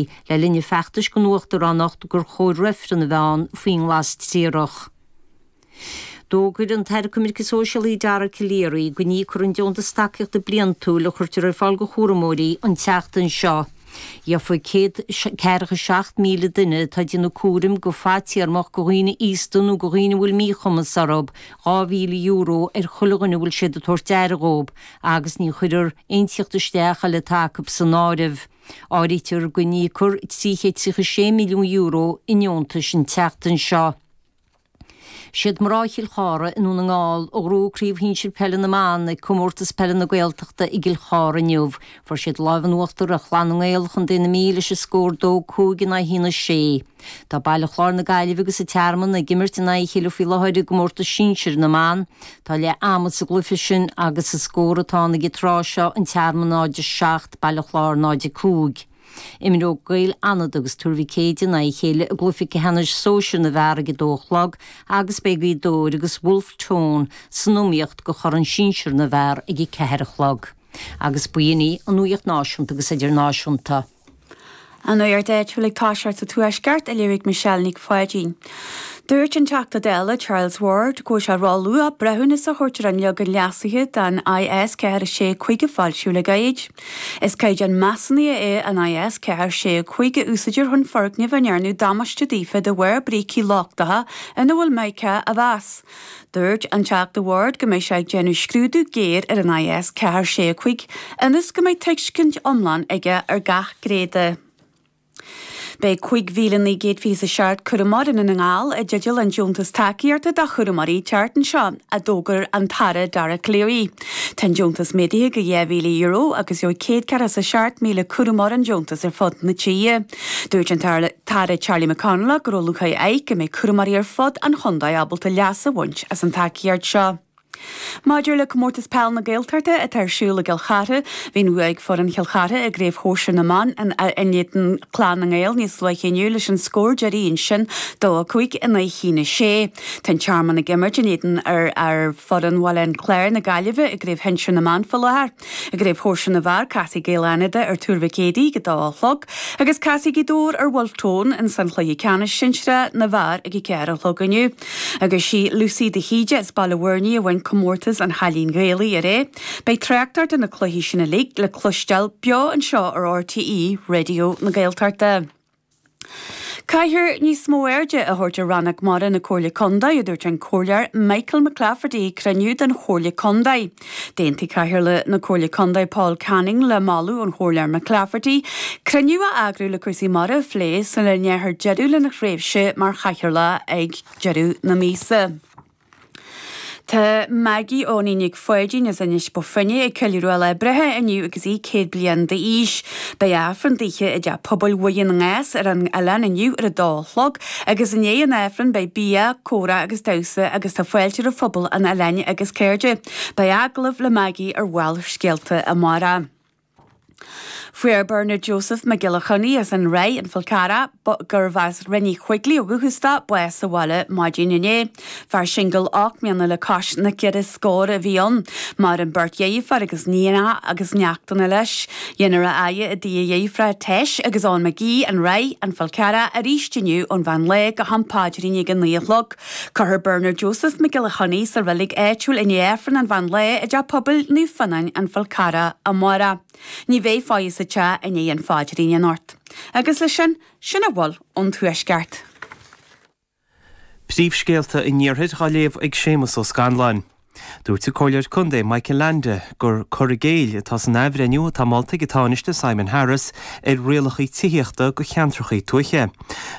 le linn a feachtais don uachtaránacht gur chóir reifreann a bheith ann faoin nglas triarach. D'fhógair an tAire Coimirce Sóisialaí Dara Calleary go n-íocfar an deontas tacaíochta bliantúil a chuirtear ar fáil do chúramóirí an tseachtain seo. Gheobhaidh céad ceathracha seacht míle duine atá ag déanamh cúraim go fadtéarmach go dhaoine aosta nó go dhaoine a bhfuil míchumas orthu, dhá mhíle euro ar chuile dhuine a bhfuil siad ag tabhairt aire dhóibh, agus ní chuirfear aon teacht isteach eile atá acu san áireamh. Áirítear go n-íocfar €336 milliún i ndeontais an tseachtain seo. Siad mná Chill Chartha i nDún na nGall a ghnóthaigh Craobh Shinsir Peile na mBan ag Comórtas Peile na Gaeltachta i gCill Chartha inniu. Fuair siad an lámh in uachtar ar Chlann na nGael, Co na Mí leis an scór 2 5 in aghaidh 1 6. Tá Baile Chláir na Gaillimhe agus an Tearmann ag imirt in aghaidh a chéile faoi láthair i gcomórtas sinsir na mban. Tá leath ama sa gcluiche sin agus is é an scór atá ann ag an tráth seo, An Tearmann 0 7 Baile Chláir 0 5. Imreoidh Gaeil Fhánada agus Tuar Mhic Éadaigh in aghaidh a chéile i gcluiche ceannais sóisir na bhfear ag a dó a chlog agus beidh Gaoth Dobhair agus Bhulf Tón san iomaíocht do chorn sinsir na bhfear ag a ceathair a chlog. Agus ba in í an nuaíocht náisiúnta agus idirnáisiúnta. An nuacht áitiúil ag toiseacht sa Tuaisceart a léirigh Michelle Nic Pháidín. Dúirt an Teachta Dála Charles Ward go bhfuil sé róluath breithiúnas a thabhairt ar an leagan leasaithe den IS 465 a foilsíodh le gairid. Is caighdeán measúnaithe é an IS 465 a úsáidtear chun foirgnimh a ndearnadh damáiste daofa de bharr brící lochtacha ina bhfuil mica a mheas. Dúirt an Teachta Ward go mbeidh sé ag déanamh scrúdú géar ar an IS 4 6 5 ionas go mbeidh tuiscint iomlán aige ar gach gné de. Beidh 5,927 cúramóir i nDún na nGall i dteideal an deontas tacaíochta do chúramóirí an tseachtain seo, a d'fhógair an tAire Dara Calleary. Tá an deontas méadaithe go €2,000 agus gheobhaidh 147,000 cúramóir an deontas ar fud na tíre. Dúirt an tAire Charlie McConalogue go raibh lúcháir air go mbeidh cúramóirí ar fud an chontae ábalta leas a bhaint as an tacaíocht seo. Maidir le Comórtas Peile na Gaeltachta atá ar siúl i gCill Chartha, bhí an bhua ag foireann Chill Chartha i gCraobh Shóisir na mBan in éadan Clann na nGael níos luaithe inniu leis an scór deiridh ansin 2 5 in aghaidh 1 6. Tá an Tearmann ag imirt in éadan fhoireann Bhaile an Chláir na Gaillimhe i gCraobh Shinsir na mBan faoi láthair. I gCraobh Shóisir na bhfear, casfaidh Gaeil Fhánada ar Tuar Mhic Éadaigh ag a dó a chlog agus casfaidh Gaoth Dobhair ar Bhulf Tón in san Chluiche Ceannais Sinsearach na bhfear ag a ceathair a chlog inniu. Agus sí Lucy de hÍde as Baile Bhuirne a bhain Comórtas an Chailín Ghaelaigh aréir. Beidh tráchtaireacht ar na cluichí sin uilig le cloisteáil beo anseo ar RTÉ Raidió na Gaeltachta. Caithfear níos mó airde a thabhairt ar Rannóg Mara na Comhairle Contae, a dúirt an Comhairleoir Michael McClafferty ag cruinniú den Chomhairle Contae. D'aontaigh Cathaoirleach na Comhairle Contae Paul Canning le moladh an Chomhairleoir McClafferty cruinniú a eagrú le cúrsaí mara a phlé sula ndéanfar deireadh lena thréimhse mar chathaoirleach ag deireadh na míosa. Tá Maggie Eoghainí Nic Pháidín, as Inis Bó Finne, ag ceiliúradh a lá breithe inniu agus í 100 bliain d'aois. Beidh Aifreann dithe i dTeach Pobail Mhuire na nGrás ar an oileán inniu ar a dó a chlog agus i ndiaidh an Aifrinn beidh bia, comhrá agus damhsa agus tá fáilte roimh phobal an oileáin agus cairde. Beidh agallamh le Maggie ar Bharrscéalta amárach. Fuair Bernard Joseph Mac Giolla Chainnigh as an Ráith, An Fál Carrach, gurbh as Rinn Uí Choigligh ó dhúchas dó, bás sa bhaile maidin inné. Fear singil ocht mbliana le cois na ceithre scór a bhí ann. Maireann beirt dheirfiúr agus nianna agus neachtanna leis. Déanfar a fhaire i dtigh a dheirféar, Tess, agus Eoin McGee, an Reidh, an fuil cara, arís inniu ón mheán lae go ham paidrín ag a naoi a chlog. Cuirfear Bernard Joseph Mac Giolla Chainnigh sa reilig áitiúil i ndiaidh Aifreann an Mheán Lae i dTeach Pobail Naomh Fionáin An Fál Carrach amárach. Ní bheidh faire sa teach i ndiaidh an phaidrín anocht. Agus leis sin, sin a bhfuil ón Tuaisceart. Príomhscéalta an Iarthair dá léamh ag Séamus Ó Scanláin. Dúirt an Comhairleoir Contae Michael Leainde gur cur i gcéill atá san athbhreithniú atá molta ag an Tánaiste Simon Harris ar rialacha tithíochta do cheantracha tuaithe.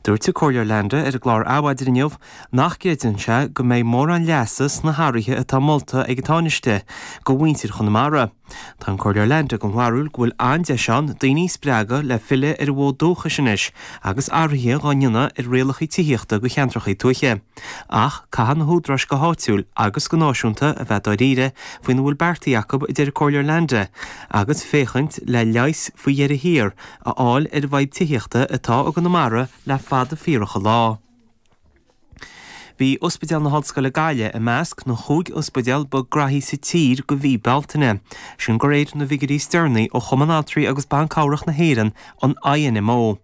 Dúirt an Comhairleoir Leainde ar an gclár Adhmhaidin inniu nach gcreideann sé go mbeidh mórán leasa sna hathruithe atá molta ag an Tánaiste do mhuintir Chonamara. Tá an Comhairleoir Leainde den bharúil go bhfuil an-deis ann daoine a spreagadh le filleadh ar a bhfód dúchais anois agus athruithe dá ndéanamh ar rialacha tithíochta do cheantracha tuaithe, ach caithfidh na húdaráis go háitiúil agus go náisiúnta a bheith dáiríre faoina bhfuil beartaithe acu, a deir an Comhairleoir Leainde, agus féachaint le leigheas faoi dheireadh thiar a fháil ar an bhfadhb tithíochta atá i gConamara le fada fíorach an lá. Bhí Ospidéal na hOllscoile Gaillimh i measc na gcúig ospidéal ba graithí sa tír do mhí Bealtaine, sin de réir na bhfigiúirí is deireanaí ó Chumann Altraí agus Ban Cabhrach na hÉireann, an INMO.